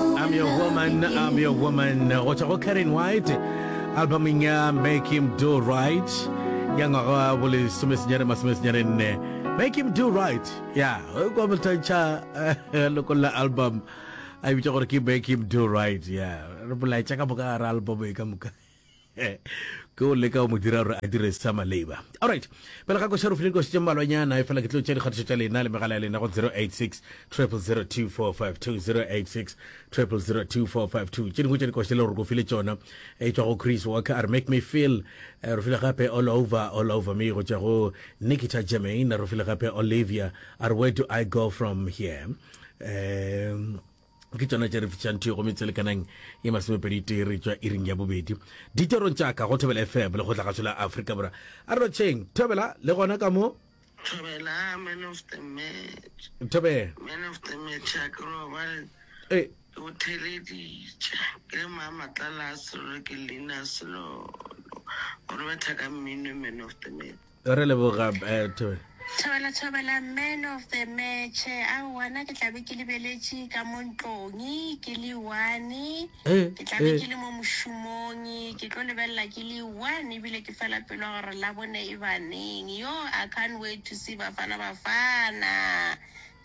I'm your woman, I'm your woman go tswa go Karen White albumeng ya Make Him Do Right ya ngwaga wa bolesomesenyane masomesenyane nne Make Him Do Right ya kwa bothantšha loko la album a bitša gore ke Make Him Do Right ya re bolaetša ka moka gare album e ka moka ke o leka o mo dira gore a dire sa maleba allright pele ga koša rofileng košitše mmalwanyana e fela ke tlo tša dikgatišo tša lena le megala ya lena go 086 002452 086 002452 tše dingwe tša dikoša le gore ko file tšona e tšwa go chris walker a re make me feel eh, re file gape all over all over me go tšwa go nikita germain re file gape olivia a re where do i go from here um ke tsona tše re fišang thuyo go metselekanang e masomepedi tee re tšwa iring ya bobedi diterong tša ka go thobela fm le go tla gašo la afrika bora a re rotšheng thobela le gona ka mo thobela man of the match thobela man of the match a ke ro ba e o theleditše ke le mama tlala selo ke lina selo gore ba thaka mmino man of the match re leboga thobela thobela thobela man of the match a wana ke tlabe ke lebeletše ka mo ntlong ke le one eh, ke tlabe eh. ke le mo mošomong ke tlo lebelela ke le one ebile ke fela pelo gore la bone e baneng yo i can't wait to see bafana bafana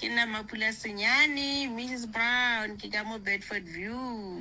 ke nna mapula senyane mrs brown ke ka mo bedford view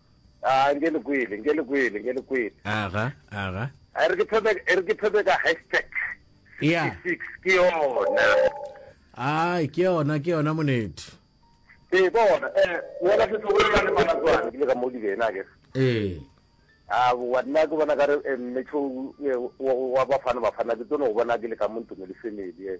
A nke le kwele, nke le kwele, nke le kwele. Aga, aga. A re ke phebe, e re ke phebe ka hashtag. Ya. Six, ke yona. Ai, ke yona, ke yona monethe. Ee, ke yona. Eh, wena se se bolela le bana tswana, ke le ka mo di bena ke. Ee. A wa nna ke bona ka re eh, mmetšho eh, wa bafana bafana ke tsono go bona ke le ka mo ntumo le family. Eh.